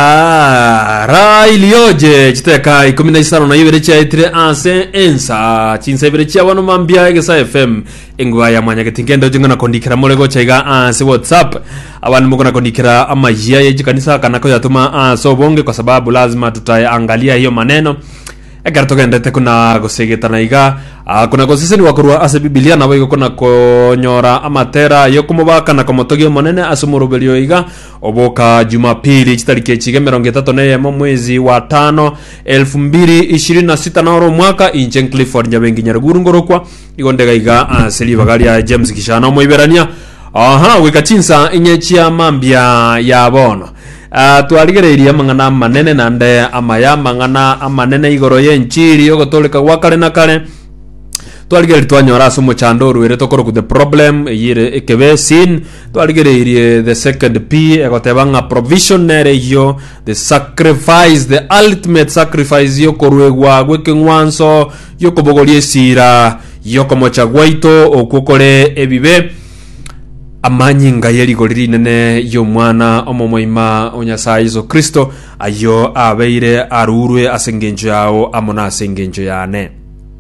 Ah, ra ilioje chiteka ikumi na isano na ibere chiaetire ase ensa chinsa ibere chia bono mambia egesa fm engwa ya mwanya getingendo jingona kondikera more gocha iga ase whatsapp abandi mokona kondikera amajia ye chikanisa kana koyatuma ase obonge kwa sababu lazima tutaangalia hiyo maneno ekero togendete kuna gosegetana iga ah, kuna goseseniwa korwa ase bibilia nabo igo kuna konyora amatera yokomobaka na komotogia omonene ase omoroberio iga Oboka Jumapili chitariki echiga emerongo etato na eyemo mwezi wa tano elfu mbiri ishirini na sita na oro omwaka inche Clifford Nyabengi Nyaruguru ngorokwa igo ndega iga ase ribaga ria James Kishana omoiberania aha goika chinsa inye chia mambia ya bono Ah, twarigereirie amang'ana amanene naende amaya amang'ana amanene igoro y'enchiri y'ogotooreka gwa kare na kare twarigereiri twanyora ase omochando oruerete okorokwa the problem eyire ekebe sin Twarigereirie the second P egoteba ng'a provision nere eyio, the sacrifice, the ultimate sacrifice y'okoruegwa gw'ekeng'wanso gi'okobogoria esira y'okomocha gwaito okwo kore ebibe, amanyinga ye rigori rinene y'Omwana omomoima o Nyasae Yeso Kristo, ayio abeire arurwe as'engencho yao amo nas'engencho yane.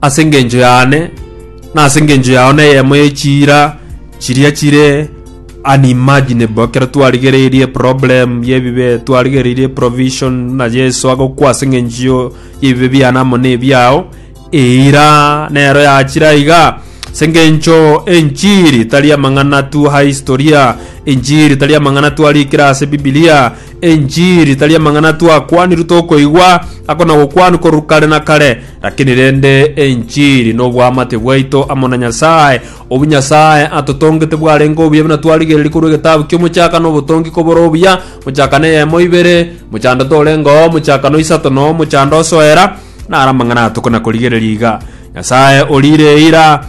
ase engencho y'ane, na ase engencho yao neyemo ye chiira chiria chire unimaginable ekero twarigereirie problem y'ebibe twarigereirie provision na Yeso agokwa ase engencho y'ebibe biane amo na ebiao eira nero yachire iga ase engencho enchiri tari amang'ana tu ha historia enchiri tari amang'ana twarikire ase bibilia Enchiri tari amang'ana twakwanirwe tokoigwa ako na gokwanwa korwa kare na kare, lakini rende enchiri noboamate bwaito amo na Nyasae. Obwo Nyasae atotongete bwarenge obuya buna twarigereria korwa egetabu ki'Omochakano obotongi kobore obuya, Mochakano eyemo ibere, mochando torenge oo, mochakano isato na omochando osoera, naro amang'ana atokona korigereria iga. Nyasae oriire eira,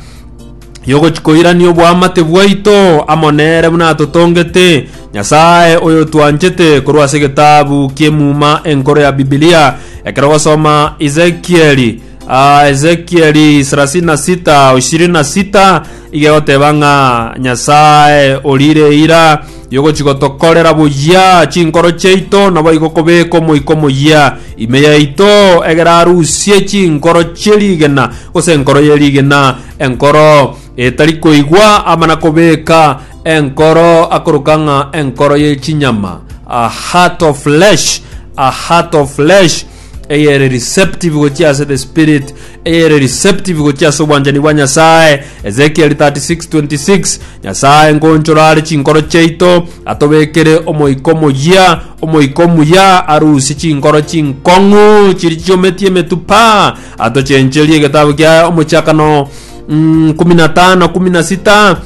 yogochikoirania oboamate bwaito amo nere buna atotongete, Nyasae oyotwanchete korwa ase egetabu ki'Emuma Enkoro ya Bibilia, ekero ogosoma Ezekieli, ah, Ezekieli 36, 26, iga egoteba ng'a Nyasae orire eira yogochigotokorera boyia chinkoro chiaito, naboigo kobeka omoika omoyia ime yaito, egere arusie chinkoro chie rigena, gose enkoro ye rigena, Enkoro etari koigwa amana kobeka enkoro akoroka ng'a enkoro ye chinyama, a heart of flesh, a heart of flesh eyere receptive gochia ase the spirit eyere receptive gochia ase obwanchani bwa nyasaye ezekiel 36:26 nyasaye ngonchora are chinkoro chiaito atobekere omoiko moyia omoiko muya arusie chinkoro chinkong'u chiri chiometie emetupa Atochencherie egetabu kia omochakano mm, kumi na tano kumi na sita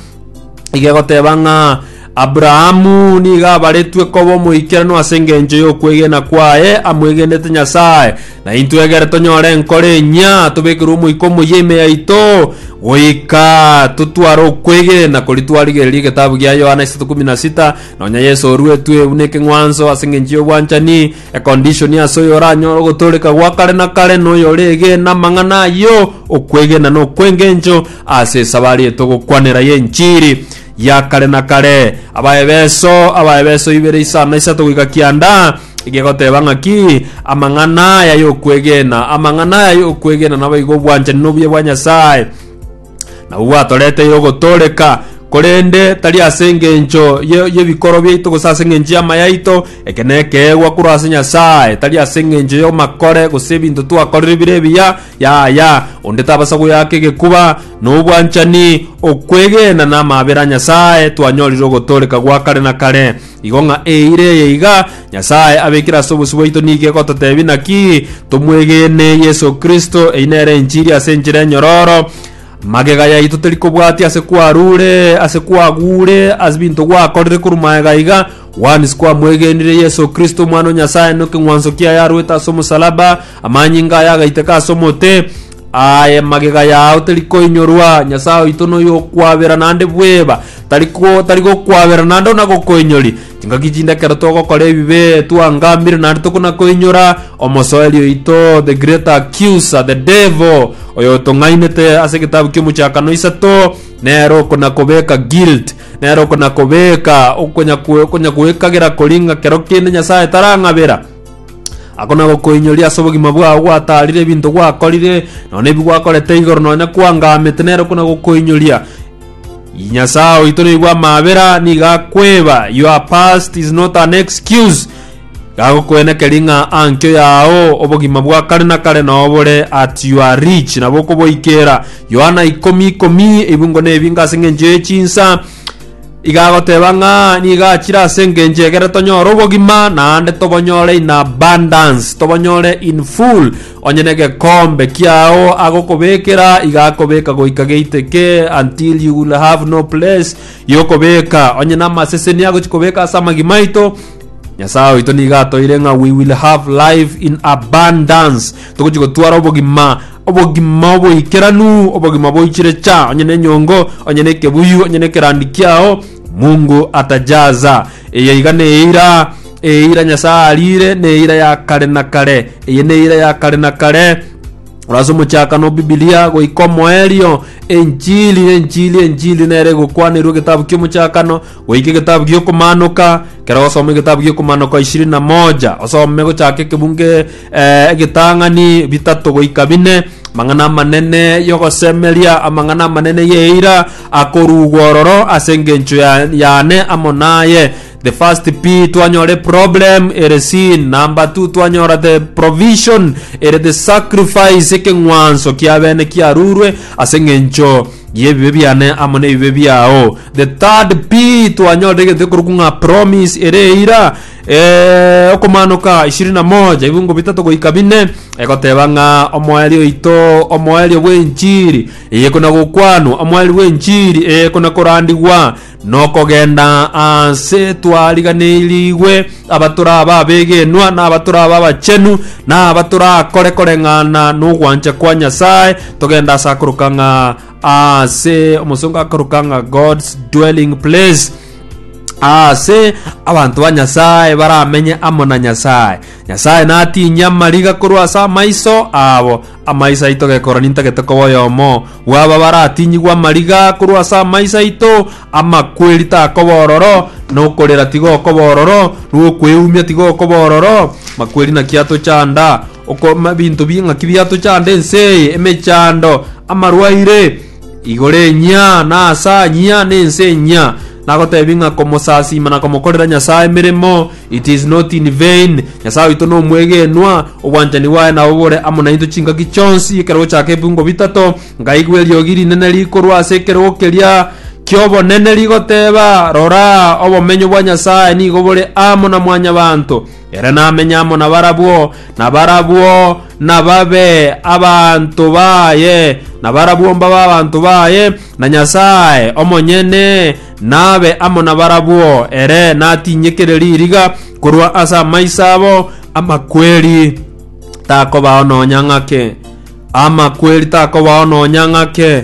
iga egoteba ng'a aburahamu nigo abaretwe koba omoikeranu ase engencho y'okwegena kwaye amwegenete nyasaye na intwe egere tonyore enkoro enyia tobekerwe omoika omoyia ime yaito goika totware okwegena kori twarigereria egetabu gia yohana isato kumi na sita nonya yesu oruetwe buna ekeng'wanso ase engencho y'obwanchani Ekondishoni ase oyoranyore ogotooreka gwa kare na kare noyoreegena amang'ana ayio, okwegena na okwengencho ase esabari etogokwanera y'enchiri ya kare na kare. Abaebeso Abaebeso ibere isano na isato goika kianda egegoteba ng'aki amang'ana aya y'okwegena. Amang'ana aya y'okwegena naboigo obwanchani nobuya bwa Nyasae. Nabwo gwatoreteire ogotooreka, korende tari ase engencho ye- y'ebikoro biaito gose ase engencho y'amaya aito, eke nekeegwa korwa ase Nyasae, tari ase engencho y'amakore gose ebinto twakorire bire ebiya, yaya, onde tabasa goyaka egekuba. Nobwanchani, okwegena, na amaabera a Nyasae twanyorire ogotooreka gwa kare na kare. Igo ng'a eira eye iga Nyasae abekire ase obosio bwaito nigo egototebia naki tomwegene Yeso Kristo, eyi nere enchiri ase enchera enyororo. Magega yaito teri kobwatia ase kwarure, ase kwagure, ase binto gwakorire korwa magega iga, once kwamwegenire Yeso Kristo Omwana o Nyasae na ekeng'wanso kiaye arwete ase omosalaba, amanyinga aye agaiteka ase omote, Aye magega yao terikoinyorwa, Nyasae oito noyo okwabera naende bweba, tariko tarigokwabera naende onagokoinyori. Chingaki chinde ekero togokora ebibe twangamire naende tokonakoinyora, omosoeri oito the great accuser, the devil, oyo otong'ainete ase egetabu ki'omochakano isato, nere okonakobeka guilt, nere okonakobeka okonya kwe- okonya kwekagera koringa kero kende Nyasae tarang'abera. Agwo nabo koinyoria ase obogima bwao gwataarire ebinto gwakorire, nonya nebi gwakorete igoro, nonya kwangamete, nero okwo nabo koinyoria. Nyasae oito noigwa amabera, nigo akweba, your past is not an excuse. Gagokwenekeri ng'a ankio yao obogima bwa kare na kare nobore at you are rich, nabo okoboikera. Yohana ikomi ikomi, ebingo nebinga ase eng'encho ye chinsa, Igagoteba ng'a nigo achire ase engencho egere tonyore obogima naende tobonyore in abundance tobonyore in full onye na egekombe kiao agokobekera igakobeka goika geiteke until you will have no place yokobeka onye na amaseseni agochi kobeka ase amagima aito nyasaye oito nigo atoire ng'a we will have life in abundance togochi gotwara obogima obogima oboikeranu obogima boichire cha onye nenyongo onye nekebuyu onye nekerandi kiao mungu atajaza eye iga neira eira nyasaye arire neira ya kare na kare eye neira ya kare na kare orase omochakano bibilia goika omoerio enchili enchili enchili nere egokwanerwa egetabu kiomochakano Goika egetabu gi'okomanoka, ekero ogosoma egetabu gi'okomanoka ishirini na moja, osome gochaka ekebunge eh, egetang'ani bitato goika bine, amang'ana amanene y'ogosemeria, amang'ana amanene y'eira akorugwa ororo ase engencho ya- yane amo naye. The first P twanyora problem ere sin, number two twanyora the provision ere the sacrifice ekeng'wanso kiabene kiarurwe ase eng'encho y'ebibe biane amo n'ebibe biao. The third P twanyorire egento ekorokwa ng'a promise ere eira eh, okomanoka ishirini na moja ebungo bitato goika bine egoteba ng'a omoerio oito omoerio bw'enchiri eye ekona gokwanwa omoerio bw'enchiri eye ekona korandigwa Nokogenda aase twariganeirirwe abatoraba abegenwa na abatoraba abachenu na abatorakore koreng'ana n'ogwancha kwa Nyasae, togenda ase akoroka ng'a ase omosongo akoroka ng'a God's dwelling place ase abanto ba nyasaye baramenye amo na nyasaye nyasaye natinye amariga korwa ase amaiso abo Amaiso aito gekoroni ntagete koba oyomo bw'aba baratinyigwe amariga korwa ase amaiso aito, amakweri takoba ororo, na okorera tigokoba ororo, na okweumia tigokoba ororo. Makweri naki atochanda? Oko- ma- binto bi- ng'aki biatochanda ense eye? Emechando, amarwaire, Igoro enyia, na asa anyia, na ense enyia, nagoteebia ng'a komosasiima na komokorera Nyasae emeremo, it is not in vain. Nyasae oito nomwegenwa, obwanchani bwaye nabo bore amo nainto chingaki chionsi. Ekero gochaaka ebiungo bitato, nkaigwa eriogi rinene rikorwa ase ekerogo keria ki'obonene rigoteeba, Rora, obomenyo bwa Nyasae nigo bore amo na Mwanyabaanto, Ere namenye amo nabarabwo, na barabwo nababe abanto baye, na barabwo mbabe abanto baye, na Nyasae omonyene nabe amo nabarabwo. Ere natinyekere ririga korwa ase amaiso abo amakweri, takobao nonya ng'ake. Amakweri takobao nonya ng'ake,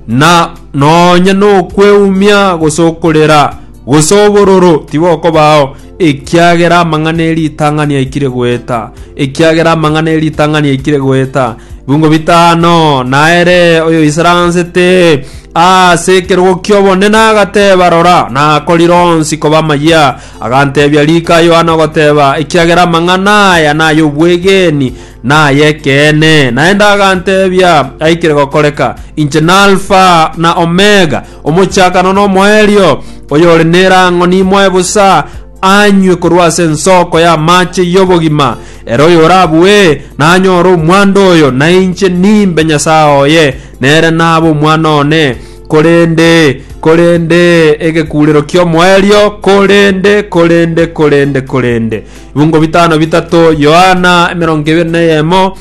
na nonya nokweumia gose okorera, gose obororo tibokobao. Ekiagera amang'ana e ritang'ani aikire goeta, ekiagera amang'ana e ritang'ani aikire goeta, bibungo bitano, naere oyoisaransete ase ekerogo ki'obonene agateba, Rora, nakorire onsi koba amayia. Agantebia rika Yohana ogoteba, Ekiagera amang'ana aya nay'obwegeni, na ay'ekeene. Naende agantebia aikire gokoreka, Inche n'Alfa na Omega, Omochakano n'omoerio, oyore nerang'o nimoe bosa anywe korwa ase ensoko y'amache y'obogima, ere oyorabue nanyore omwando oyo, na inche nimbe Nyasae oye, nere nabe omwana one. Korende, korende, egekurero ki'omoerio, korende, korende, korende, korende. Bibungo bitano bitato, Yohana emerongo ebere na eyemo,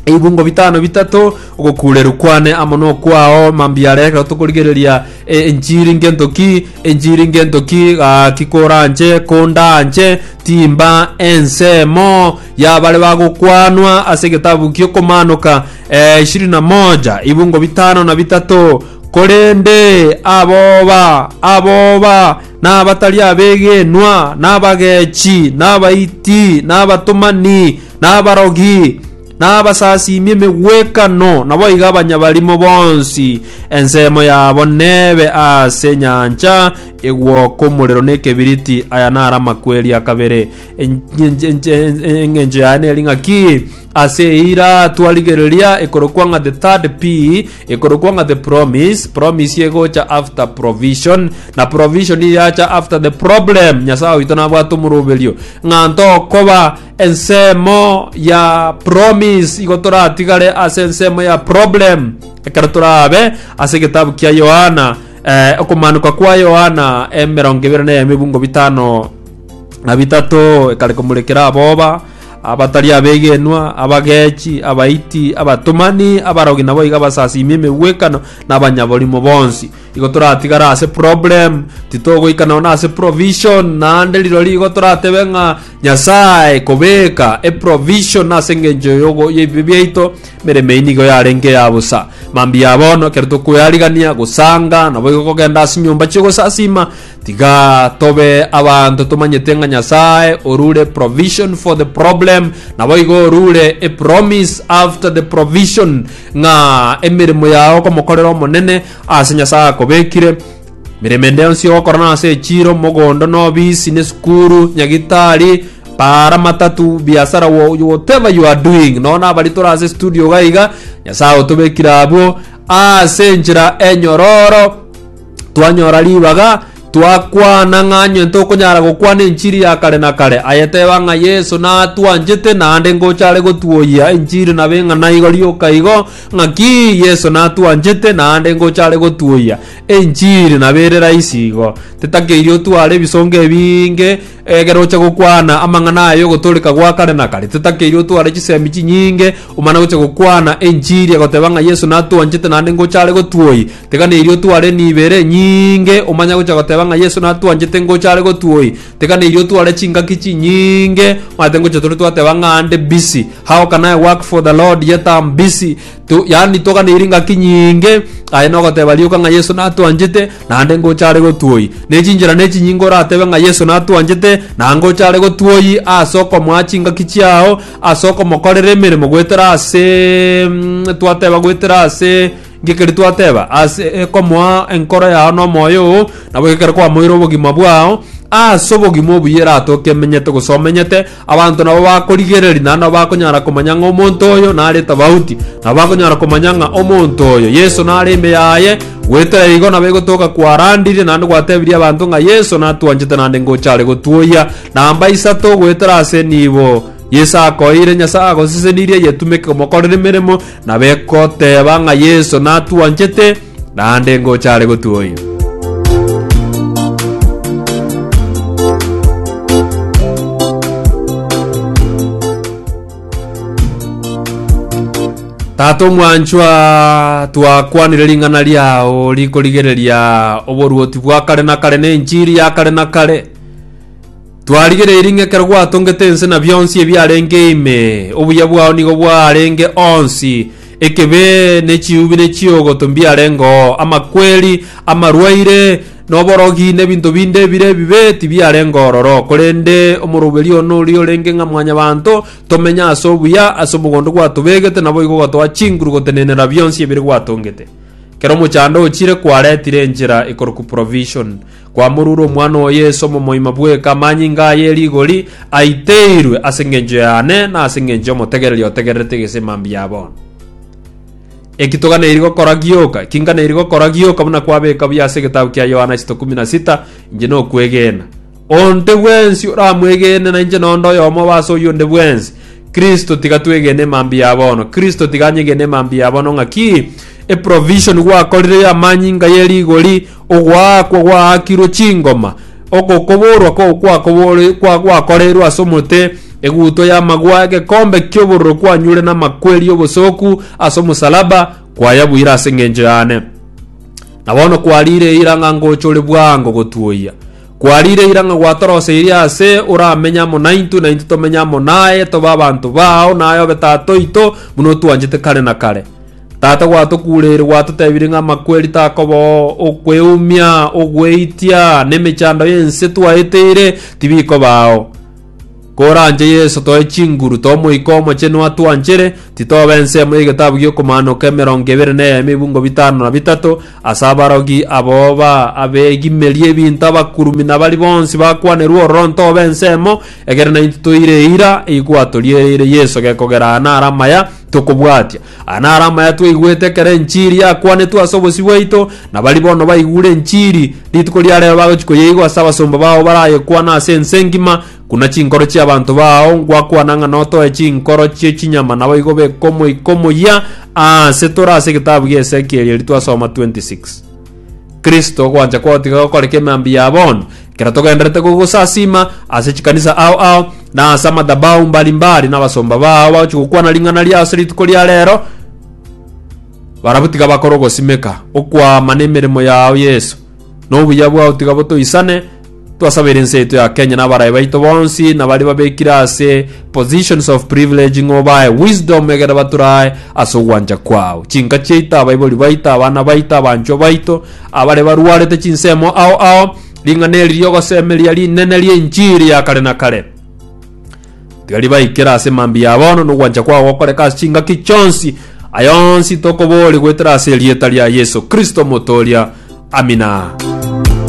ebibungo bitano bitato ogokureru kwane amo nokwao mambia are ekero tokorigereria e, enchiri ngento ki enchiri ngento ki gaki koranche kondanche timba ensemo yabare bagokwanwa ase egetabu giokomanoka eh, ishirini na moja ibungo bitano na bitato korende aboba aboba n'abatari abegenwa n'abagechi n'abaiti n'abatomani nabarogi, na abasasiimi emegwekano, naboigo abanyabarimo bonsi, ensemo yabo nebe ase enyancha egwoka omorero na ekebiriti. Aya naro amakweri a kabere. Engencho yaye neri ng'aki? Ase eira twarigereria ekorokwa ng'a the third P, ekorokwa ng'a the promise, promise egocha after provision, na provision yacha after the problem. Nyasae oito nabwate omoroberio ng'a ntokoba ensemo ya promise igo toratigare ase ensemo ya problem ekero torabe ase egetabu kia yohana eh, okomanuka kwa yohana emerongo ebere na emebungo bitano na bitato ekare komurekera aboba abatari abegenwa abagechi abaiti abatomani abarogi nabo iga basasimi emegwekano na abanyaborimo bonsi Igo toratigara ase problem, titogoika nonya ase provision, naende rirori igo toratebe ng'a Nyasae kobeka eprovision ase engencho yogo- y'ebibe biaito, emeremo eyio nigo yarenge eya bosa. Mambia bono, ekero tokoearigania, gosanga, naboigo kogenda ase chinyomba chi'ogosasiima, tiga tobe abanto tomanyete ng'a Nyasae orure provision for the problem, naboigo orure epromise after the provision, ng'a emeremo yao okomokorera Omonene, Ase Nyasae akobekire mirimo ende yonsi ogokora na ase echiro, mogondo, na obisi, na esukuru, nyagitari, para, matatu, biasara, wha- whatever you are doing. Nonya na abari tore ase studio iga iga, Nyasae otobekire abwo ase enchera enyororo twanyora ribaga Twakwana ng'a onye tokonyara gokwana enchiri ya kare na kare, aye teba ng'a Yeso natwanchete naende ngochare gotuoyia enchiri na beng'ana igo rioka igo, ng'aki Yeso natwanchete naende ngochare gotuoyia enchiri na bere raisi igo. Tetakeiri otware ebisongo ebinge egere oche gokwana amang'ana aya y'ogotoreka gwa kare na kare. Tetakeiri otware chisemi chinyinge omana gocha gokwana enchiri egoteba ng'a Yeso natwanchete naende ngochare gotuoyia. Tekaneirie otware nibere nyinge omanye gocha goteba ng'a Yeso natwanchete ngocha are gotwoyi. Tekaneirie otware chingaki chinyinge omanyete ngocha tore twateba ng'a ande busy. How can I work for the Lord yet am busy? Tu, yani toganeirie ngaki nyinge aye nogoteba rioka ng'a Yeso natwanchete naende ngocha are gotwoyi. Nechinchera nechinyinge oratebe ng'a Yeso natwanchete na ngocha are gotwoyi ase okomoa chingaki chiao ase okomokorera emeremo goetera ase mm, twateba goetera ase Gekeri twateba ase ekomoa enkoro yao nomoyo oo, nabo gekero kwamoire obogima bwao, ase obogima obuya eratoke emenyete gose omenyete, abanto nabo bakorigereria naende nabo bakonyara komanya ng'a omonto oyo nare tofauti. Nabo bakonyara komanya ng'a omonto oyo Yeso nare ime yaye, goetera igo nabo egotoka kwarandirie naende gwatebirie abanto ng'a Yeso natwanchete naende ngocha are gotwoyia. Namba isato goetera ase nibo Yeso akoeire Nyasae agosesenirie eyetumeke komokorera emeremo, na begoteeba ng'a Yeso natwanchete, naende ngocha are gotuoyia. Tata omwanchwa, twakwanire ring'ana riao rikorigereria oboruoti bwa kare na kare na enchiri ya kare na kare. Twarigereiri ng'a ekero gwatongete ense na bionsi ebiarenge ime, obuya bwao nigo bwarenge onsi, ekebe, ne chiubi, ne chiogoto mbiarenge oo, amakweri, amarwaire, na oborogi, na ebinto binde ebire ebibe tibiarenge ororo. Korende omoroberio one oria orenge ng'a mwanyabanto, tomenye ase obuya, ase omogondo gwatobegete, naboigo ogatoa chinguru gotenenera bionsi ebire gwatongete. Kera omochando ochire kwaretire enchera ekorokwa provision, Kwamorure omwana o Yeso omomoima bweka amanyinga aya e rigori aiteirwe ase engencho yane na ase engencho y'omotegereri otegererete egesima mbuya bono. Eki toganeiri gokora gioka, eki nganeiri gokora gioka buna kwabeka buya ase egetabu kia Yohana isito kumi na sita, inche nokwegena. Onte bwensi oramwegene nainche nonde oyomo oba ase oyio onde bwensi. Kristo tiga twegene emambia ya bono. Kristo tiga anyegene emambia ya bono ng'aki? Eprovision gwakorire y'amanyinga ye rigori Ogoakwa gwaakirwe chingoma, ogokoborwa gwakoreirwe ase omote, egutwa y'amagwa, egekombe ki'obororo kwanyure namakweri y'obosoku ase omosalaba, kwayabuire ase engencho yane. Na bono kwariire eira ng'a ngochore bwango gotuoyia. Kwariire eira ng'a gwatoroseirie ase oramenye amo naintwe, na intwe tomenye amo naye, tobe abanto bao, naye obe Tata oito, buna otwanchete kare na kare. Tata gwatokuureire gwatotebirie ng'a amakweri takobao, okweumia, ogweitia, na emechando y'ense twaeteire tibikobao. Koranche Yeso toe chinguru t'Omoika Omochenu atwanchere, titoba ensemo y'egetabu gi'okomaanoka emerongo ebere na ey'emebungo bitano na bitato, ase abarogi abo ba abegimerie ebinto abakurumi na baria bonsi bakwanerwe ororo ntoba ensemo, egerana intwe toire eira, eyi gwatoriereire Yeso gekogera aa naro amaya tokobwatia. Aya naro amaya twaigwete ekero enchiri yakwanetwe ase obosio bwaito, na baria bono baigure enchiri rituko ria rero bagochia koyeigwa ase abasomba bao barayekwane ase ense engima, Kuna chinkoro chi'abanto bao ngwakwana ng'a notoe chinkoro chie chinyama naboigo bekomoikomoyia aase tore ase egetabu gi'Esekieli eri twasoma 26. Kristo ogwancha kwagotiga gokora kemambi ya bono, ekero togenderete kogosasiima ase chikanisa ao ao, na ase amadhabahu mbari mbari, na abasomba bao bagochia gokwana ring'ana riao ase rituko ria rero, barabwo tiga bakore ogosimeka, okwama, na emeremo yao, Yeso, na obuya bwao tiga botoisane, Twasabera ense yaito ya Kenya na abarayi baito bonsi nabare babekire ase positions of privilege ng'o bae wisdom egere baturae ase ogwancha kwao. Chinka chiaito, abaibori baito, abana baito, abanchwa baito abare barwarete chinsemo ao ao, ring'ana eri riogosemeria rinene ri'enchiri ya kare na kare. Tiga ribaikere ase mambia ya bono nogwancha kwao gokoreka ase chingaki chionsi. Ayonsi tokobori goetera ase erieta ria Yeso Kristo Omotooria. Amina.